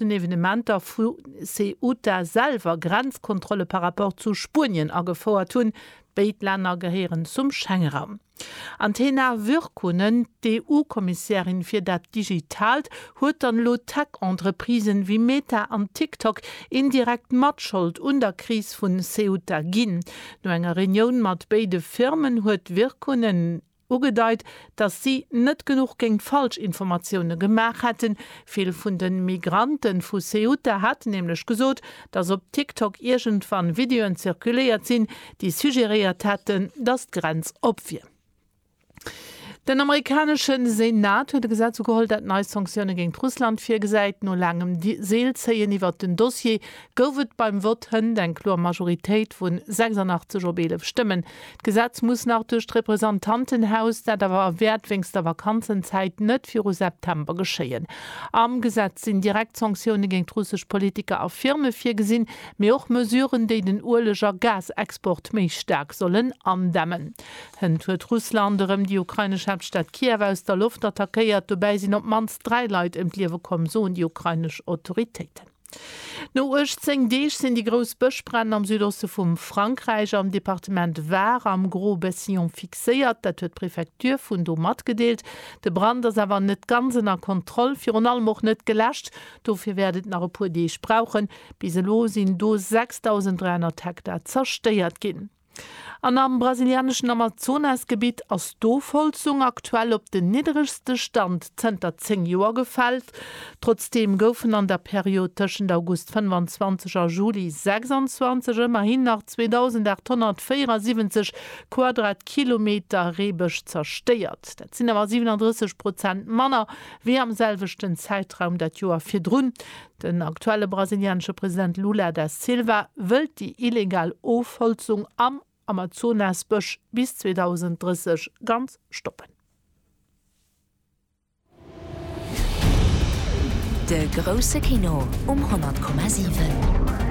den Evenementer vu Ceuta selwer Grenzkontrolle par rapport zu Spuenien agefouert hunn. Béid Länner gehéieren zum Schengeraum. An d'Hena Virkkunen, d'EU-Kommissärin fir dat Digitaalt, huet dann elo Tech-Entreprisen wéi Meta an TikTok indirekt Matschold un der Kris vu Ceuta ginn. No enger Reunioun mat béide Firmen huet d'Virkkunen ugedeit, datt si net genuch géint Falschinformatioune gemaach hätten. Vill vun de Migrante vu Ceuta haten nämlech gesot, datt op TikTok iergendwann Videoen zirkuléiert sinn, déi suggeréiert hätten, datt d'Grenz op wier. Den amerikanesche Senat huet e Gesetz ugeholl, dat nei Sanktioune géint Russland virgesäit. No laangem Seelzéien iwwert den Dossier gouf et beim Vott hënt eng kloer Majoritéit vun 86 op 11 Stëmmen D'Gesetz muss nach duerch d'Representantenhaus, dat awer wäert wéinst der Vakanzenzäit net viru September geschéien. Am Gesetz sinn direkt Sanktioune géint russesch Politiker a Firme virgesinn, mee och Mesuren, déi den Ueleg a Gasexport méi staark sollen andämmen. Hënt huet Russland erëm déi ukrainesch Haaptstad Kiew aus der Loft attackéiert. Dobäi sinn op d'mannst dräi Leit ëm d'Liewe komm, soen déi ukrainesch Autoritéiten. No 18 Deeg sinn déi grouss Bëschbränn am Südoste vum Frankräich am Departement Var am Gros-Bessillon fixéiert. Dat huet d'Prefecture vun do matgedeelt. De Brand ass awer net ganz ënner Kontroll, virun allem och net geläscht. Dofir wäert et nach e puer Deeg brauchen. Bis elo sinn do 6.300 Hektar zerstéiert ginn. An am brasilianeschen Amazonasgebitt ass d'Ofholzung aktuell op den nidderegste Stand zënter 10 Joer gefällt. Trotzdeem goufen an der Period tëschent August 25 a Juli 26 ëmmerhin nach 2.874 Quadratkilometer Reebësch zerstéiert. Dat sinn awer 37 Prozent manner wéi am selwechten Zäitraum dat Joer virdrun. Den aktuelle brasilianesche President Lula da Silva wëllt déi illegal Ofholzung am Amazonasbësch bis 2030 ganz stoppen. De grousse Kino um 100,7.